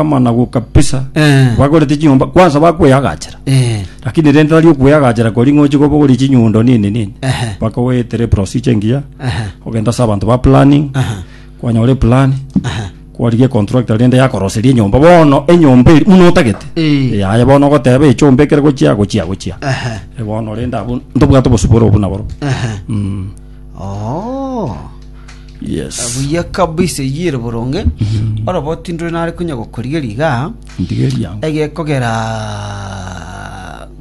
amanagu kabisa Eh. bagorete chinyomba kwanza bakweyagachera Eh. lakini rende tari okweyagachera kori ng'ochi kobogori chinyundo nini nini Ehe. mpaka oetere procedure engiya Ehe. ogenda ase abanto ba planning Aha. kwanyore plan Aha. kwarigia contractor rende yakoroseria enyomba bono enyomba eri muno otagete Eh. yaye bono ogoteba echomba ekere gochia gochia gochia Aha. Eh, bono rende abu ntobwate obosubore obu naboro Aha. Mm. Oh. Yes. buya kabisa eyio ere boronge orobo tindore nare konya gokorigeria iga Ndigeria. egekogera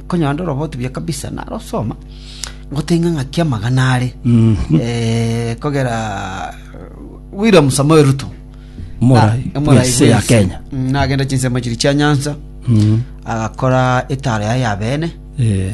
konyora nde orobo otubuya kabisa narosoma ngotenga ng'aki amagana are Mhm. Eh, kogera william samuel ruto Morai. Na- Morai Yes, ya Wilson. Kenya. Mm, nagenda chinsemo chiri chia nyansa Mhm. agakora etara yaye ya bene Eh.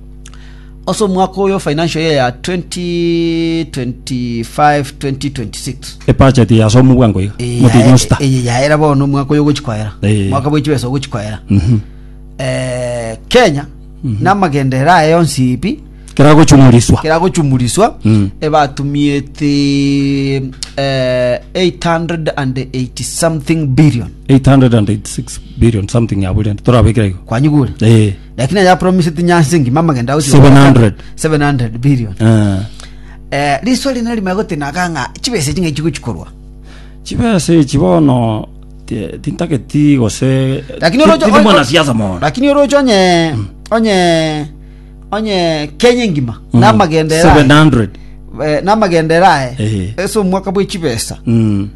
Ase omwaka oyo o financial year ya 2025-2026, Ebudget ya ase omogwango iga. eye Motienyi yae- osta. eye yaera bono omwaka oyo ogochi koera Eh. omwaka bwa chibesa ogochi koera Mhm. Eh, kenya namagenderero aye yonsi pi Kera gochumuriswa. kera gochumuriswa Mm. ebatumiete eh, 880 something billion 886 billion something abulire. Torabekire igo. kwanyigure Eh. Lakini yapromise tinyansi engima amagenda agochia Seven gokoa hundred. 700 billion Eh, eh riso rine rime gotenaga ng'a chibesa echi ng'echi gochikorwa chibesa echi bono ti- tintageti gose lakini ti- oroche tindi mwanasiasa mono lakini oroche onye onye onye Kenya engima Mm. namagendera 700 eh, namagendera Eh. ese omwaka bwe chibesa Mm.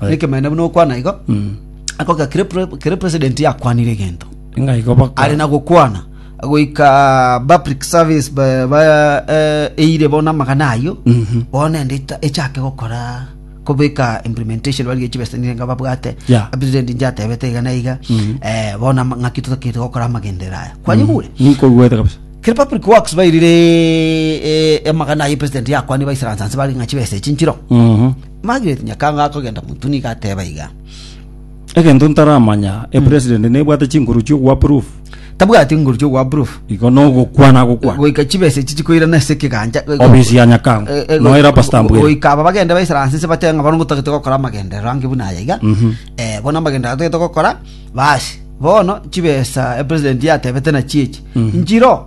Aye. nekemanene buna okwana igo akoka kere pre- kere president yakwanire egento ng'a igo baka ari na gokwana goika public service ba- ba- eh, eire bono amagana ayio Mhm. bono nende ita- echake gokora kobeka implementation bari gechibesenire nga babwate Yeah. president inche atebete iga na iga Mhm. eh, bono ama- ng'aki totakete gokora amagendera aya kwanyigure nkoruete kabisa kere public works bairire eh, amagana aye president yakwani baisiransanse bari ng'a chibesa echi nchiro Mhm. Margaret Nyakango akogenda Muntu nigo ateba iga. Egento ntaramanya, e president nebwate chinkuru chi'ogo approve? Tabwati inguru chio approve. Igo nogokwana agokwana. Goika chibesa echi chikoirana ase ekegancha. Ofisi ya Nyakango. Eh, eh, Noera go- Pastor go- Ambwene. Goika aba bagenda baisara hansi nse bateba ng'a bono ngotagete gokora amagenderero ange buna aya iga. Eh, bono amagenderero atagete gokora, basi. Bono chibesa e president yatebete nachio echi. Nchiro.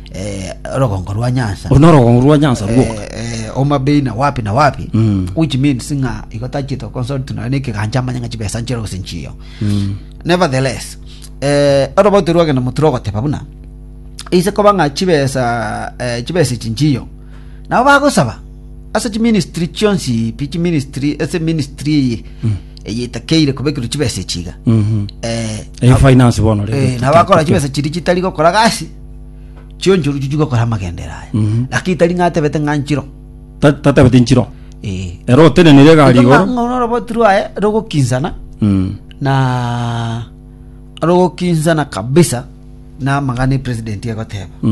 eh, orogongo rwa nyansa Oro norogongo rwa nyansa ruoka Eh, eh, Homa Bay na wapi na wapi Mm. which means ng'a igo tachete consult na nekegancha amanya ng'a chibesa nchire gose nchiyo nevertheless eh, orobote rwagenda motire ogoteba buna ise koba ng'a chibesa eh, chibesa echi nchiyo nabo bagosaba ase chiministry chionsi pi chiministry ase ministry eye eye etakeire kobekirwa chibesa echiga Mhm. eh, Eh, finance bono rero eh, nabo bakora chibesa chiri chitari gokora gasi chionchoro chichia gokora amagendere aya Mhm. lakini tari ng'atebete ng'a nchiro Ta- tatabete nchiro Eh. ero otenenire egari Igo igoro ng'a- ng'a oroboti rwaye rogokinsana Mm. na rogokinsana kabisa na amagana epresident egoteba